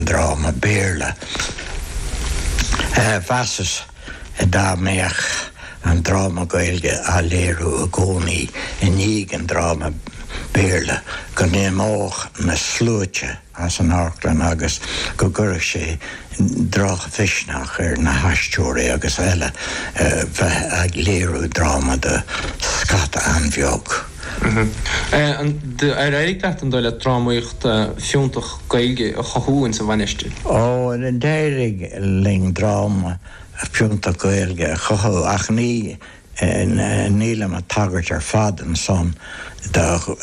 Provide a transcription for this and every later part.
ndráma Béarla. Mheasas dá mbeadh an dráma Gaeilge á léiriú i gcónaí i ndiaidh an dráma Béarla go n-imeodh na sluaite as an amharclann agus go gcuirfeadh sé drochmhisneach ar na haisteoirí agus eile bheith ag léiriú dráma do scata an-bheag. Ar éirigh leat, an dóigh leat, drámaíocht fiúntach Gaeilge a chothú ins an Mhainistir? Ó, d'éirigh linn dráma fiúntach Gaeilge a chothú ach ní nílim ag tagairt ar fad ansan do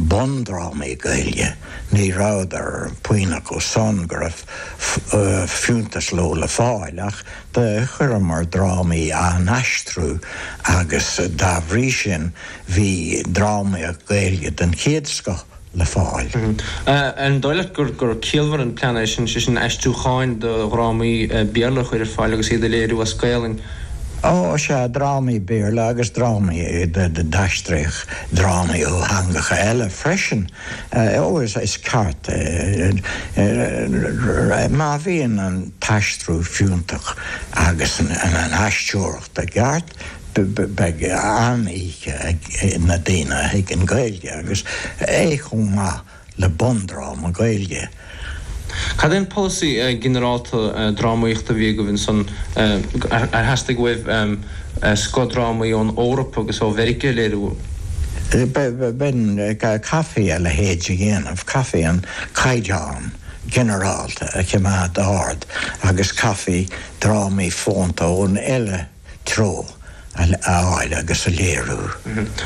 bundrámaí Gaeilge, ní rabhadar puinn acu san go raibh fiúntas leo le fáil ach Do chuireamar drámaí á n-aistriú agus dá bhrí sin bhí drámaíocht Ghaeilge den chéad scoth le fáil. An dóigh leat gur ciallmhar an plean é sin, sé sin aistriúcháin do dhrámaí Béarla a chur ar fáil agus iad a léiriú as Gaelainn? Ó, sea, drámaí Béarla agus drámaí do, d'aistríodh drámaí ó theangacha eile freisin. Ó is, is ceart, má bhíonn an t-aistriú fiúntach agus an aisteoireacht i gceart, beidh an-oíche ag na daoine a thuigeann Gaeilge agus é chomh maith le bundráma Gaeilge. Cad é an polasaí ginearálta drámaíochta a bhí agaibh ansan? Ar theastaigh uaibh scoth drámaí ón Eoraip agus ó Mheirice a léiriú? B'in, chaithfí a leithéid a dhéanamh, chaithfí an caighdeán ginearálta a choimeád ard agus chaithfí drámaí fónta ón eile, treo a fháil agus a léiriú.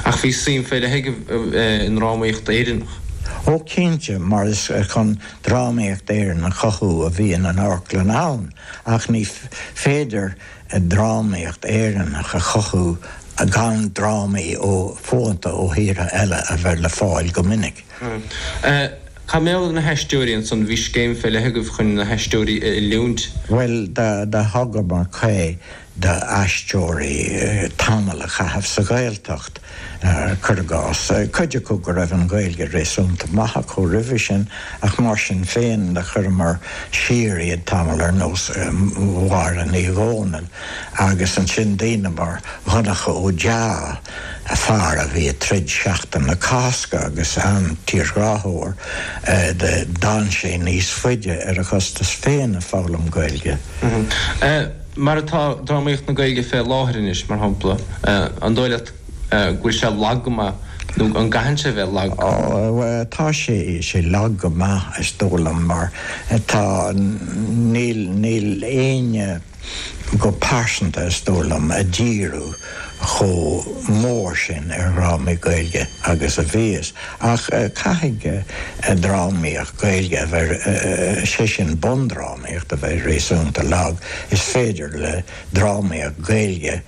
Ach bhí suim fé leith agaibh i ndrámaíocht Éireannach. Ó cinnte, mar is chun drámaíocht Éireannach a chothú a bhíonn an amharclann ann, ach ní féidir drámaíocht Éireannach a chothú gan drámaí ó, fónta ó thíortha eile a bheith le fáil go minic. Cad mar gheall ar na haisteoirí ansan? Bhí scéim fé leith agaibh chun na haisteoirí a oiliúint. Bhuel, do thugamar caoi do aisteoirí tamall a chaitheamh sa Ghaeltacht, cur i gcás. Cuid acu go raibh an Ghaeilge réasúnta maith acu roimhe sin ach mar sin féin do chuireamar siar iad tamall ar nós Mháire Ní Dhomhnaill agus ansin daoine mar Dhonncha Ó Dea, an fear a bhí ag troid Seachtain na Cásca agus an tírghráthóir a d'fhan sé níos faide ar a chostas féin ag foghlaim Gaeilge. Mar atá drámaíocht na Gaeilge fé láthair anois, mar shampla, an dóigh leat go bhfuil sé lag go maith nó an gcaitheann sé bheith lag? Tá sé lag go maith is dóigh liom mar tá, níl, níl éinne. go pearsanta is dóigh liom, ag díriú chomh mór sin ar dhrámaí Gaeilge agus a bhíos. Ach caithfidh drámaíocht Ghaeilge a bheith, sé sin bundrámaíocht, a bheith réasúnta lag. Is féidir le drámaíocht Ghaeilge.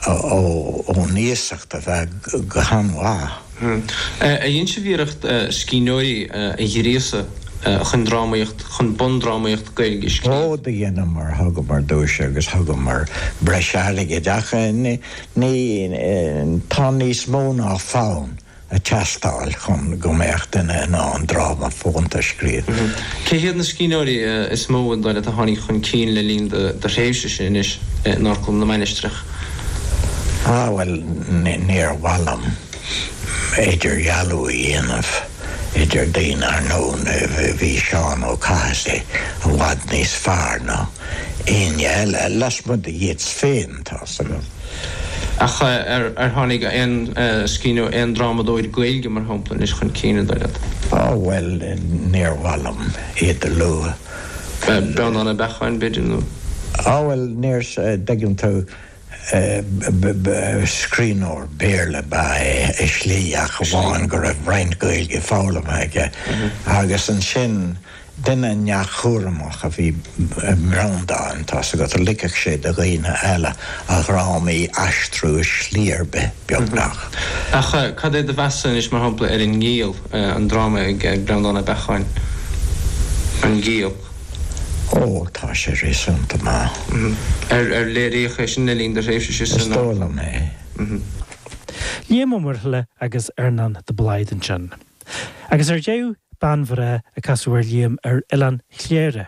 ón iasacht a bheith go han-mhaith. D'ainneoin iarracht scríbhneoirí a ghríosadh chun drámaíocht, chun bundrámaíocht Gaeilge a scríobh. Rud a dheineamar, thugamar duais agus thugamar breis airgid ach tá níos mó ná fonn. ag teastáil chun go mbeadh duine in ann dráma fónta a scríobh. Cé hiad na scríbhneoirí is mó, dar leat, a tháinig chun cinn le linn do thréimhsese anois in Amharclann na Mainistreach? Ah, bhuel, níor mhaith liom idirdhealú a dhéanamh idir daoine, ar ndóigh, bhí Seán Ó Cathasaigh i bhfad níos fearr ná éinne eile, lasmuigh de Yeats féin. Tá suimiúil. Ach ar tháinig aon scríbhneoir, aon drámadóir Gaeilge, mar shampla, anois chun cinn, dar leat? Á, bhuel, níor mhaith liom iad a lua. Breandán Ó Beacháin, b'fhéidir, nó? Á, bhuel, níor, dtuigeann tú, scríbhneoir Béarla ba ea é, i slí, ach amháin go raibh roinnt Gaeilge foghlamtha aige. Agus ansin. Duine neamhchúramach a bhí i mBreandán, tá a fhios agat, ligfeadh sé do dhaoine eile a dhrámaí a aistriú i slí ar bith beagnach. Ach cad é do mheas anois, mar shampla, ar An Giall, an dráma ag Breandán Ó Beacháin? An Giall. Ó, tá sé réasúnta maith. Ar léiríodh é sin le linn do thréimhse sa. Is dóigh liom é. Liam Ó Muirthile agus Earnán de Blaghd ansin. Agus ar deireadh, bean bhreá a casadh ar Liam ar Oileán Chléire.